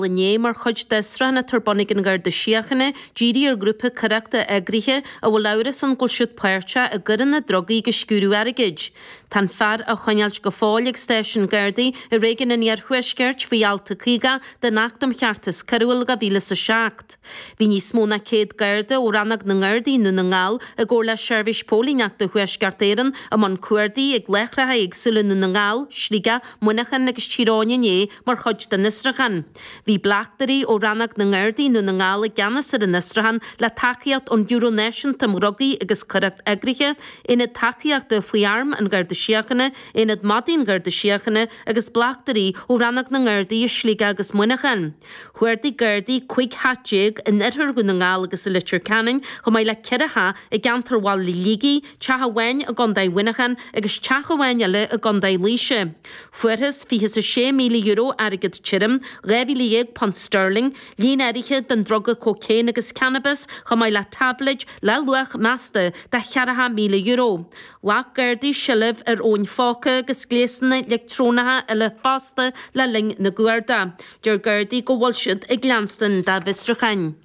inné mar chuid de Sraitheanna Torbonnaigh an Gharda Síochána díriú ar ghrúpa coireachta eagraithe a bhfuil amhras ann go bhfuil siad páirteach i gcoireanna drugaí agus sciúradh airgid. Tá an fear á choinneáilt go fóill ag Stáisiún Gardaí i Réigiún an Iarthuaiscirt faoi Alt a 50 den Acht um Cheartas Coiriúil 2007. Bhí níos mó ná 100 Garda ó Rannóg na nGardaí i nDún na nGall i gcomhar le Seirbhís Póilíneachta Thuaisceart Éireann i mbun cuardaigh ag láithreacha éagsúla i nDún na nGall, Sligeach, Muineachán agus Tír Eoghain inné mar chuid den fhiosrúchán. Bhí bleachtairí ó rannóg na nGardaí i nDún na nGall i gceannas ar an fhiosrúchán, le tacaíocht ón mBiúró Náisiúnta um Dhrugaí agus Coireacht Eagraithe, Aonad Tacaíochta faoi Arm an Gharda Síochána, Aonad Madaí an Gharda Síochána agus bleachtairí ó rannóg na nGardaí i Sligeach agus Muineachán. Chuardaigh Gardaí 15 theach in oirthear Dhún na nGall agus i Leitir Ceanainn, chomh maith le ceithre theach i gceantar Bhaile Shligigh, teach amháin i gcontae Mhuineacháin agus teach amháin eile i gcontae Laoise. Fuarthas €26,000 airgead tirim, £12,000 sterling, líon áirithe den druga cócaon agus cannabas, chomh maith le táibléid le luach measta de €4,000. Ghlac Gardaí seilbh ar fhóin phóca agus gléasanna leictreonacha eile fosta le linn na gcuardach. Deir Gardaí go bhfuil siad ag leanstan dá bhfiosrúcháin.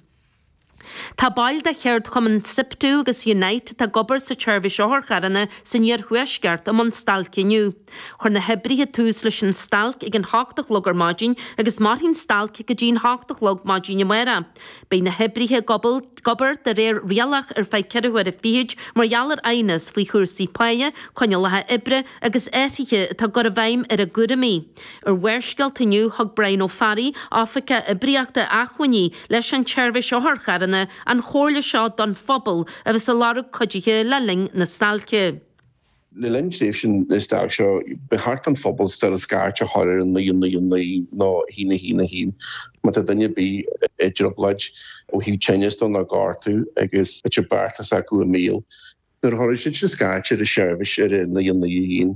Tá baill de cheardchumann Siptu agus Unite atá ag obair sa tseirbhís otharcharranna san iarthuaisceart i mbun stailce inniu. Chuir na hoibrithe tús leis an stailc ag an hocht a chlog ar maidin agus mairfidh an stailc go dtí'n hocht a chlog maidin amáireach. Beidh na hoibrithe ag obair de réir rialach ar feadh ceithre huaire fichid mar gheall ar aighneas faoi chúrsaí páighe, coinníollacha oibre agus athruithe atá á gcur i bhfeidhm ar a gcúraimí. Ar Bharrscéalta inniu, thug Brian Ó Fearraigh, Oifigeach Oibríochta Acmhainní leis an tSeirbhís Otharcharranna, an chomhairle seo don phobal a bheas a lorg cuidithe le linn na stailce. Le linn tréimhse na stailc seo, ba cheart don phobal still scairt a chur ar an 999 nó 111 má tá duine ar bith i dtrioblóid ó thaobh tinneas de nó gortú agus tá beatha s'acu i mbaol. Nuair a chuirfidh siadsan scairt ar an seirbhís ar an 999,